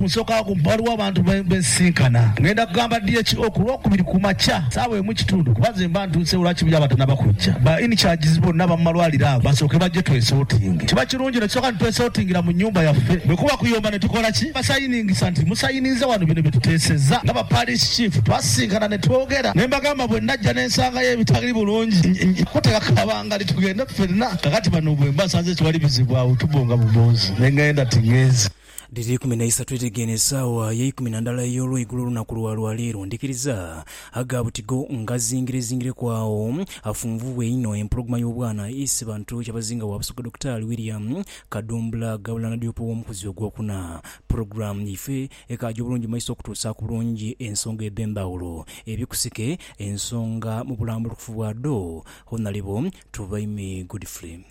Nsooka ku ghaligho abantu be nsisinkana. Ng'enda kugamba DHO ku Lwokubiri ku makya saawa emu ekitundu kuba nze mba ntuuseewo lwa kibuyaga batanaba kujja. Ba in charges bonna aba mu malwaliro ago basooke bajje twesortinge. Kiba kirungi ne tusooka ne twesortingira mu nnyumba yaffe. Bwe kuba kuyomba ne tukola ki? Basayiningisa nti, Musayiniize wano bino bye tuteesezza. Nga ba Parish Chief twasisinkana ne twogera ne mbagamba bwe najja ne nsangayo ebitali bulungi nja kuteeka kabangali tugende ffenna. Kaakati bano bwe mba nsanze tewali bizibu awo tubonga bubonzi ne ng'enda ting'enze. Dhiri ikumi na isatu edhigya eno esaawa y'eikumi na ndala ey'olweigulo olunaku lwa lwa leero. Ndhikiriza aga buti go ngazingirezingireku agho afunvubwe einho empologoma y'obwana Isibantu Kyabazinga wa Busoga Dokitaali William Kadumbula Gabulana Diop ow'omukuzi ogwokuna. Pulogulaamu yaife ekaaja obulungi mu maiso okutuusaaku bulungi ensonga edh'endhawulo eri kusike ensonga mu bulambulukufu bwadho. Honalebo Tubaime Godfrey.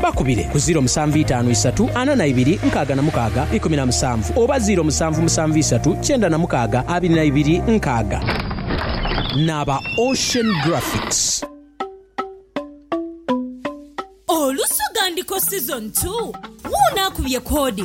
Bakubire ku ziiro musanvu itaanu isatu ana na ibiri nkaaga na mukaaga ikumi na musanvu oba ziiro musanvu musanvu isatu kyenda na mukaaga abiri na ibiri nkaaga. N'aba Ocean Graphics. Olusu ghandiko season two, wuuno akubye koodi.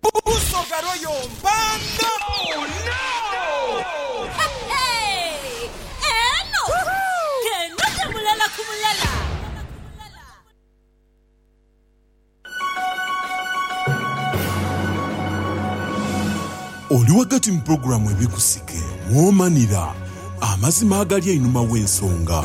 Busoga Royal Mpanda. Oli ghagati mu pulogulaamu Ebikusike, mwomanira amazima agali einhuma gh'ensonga.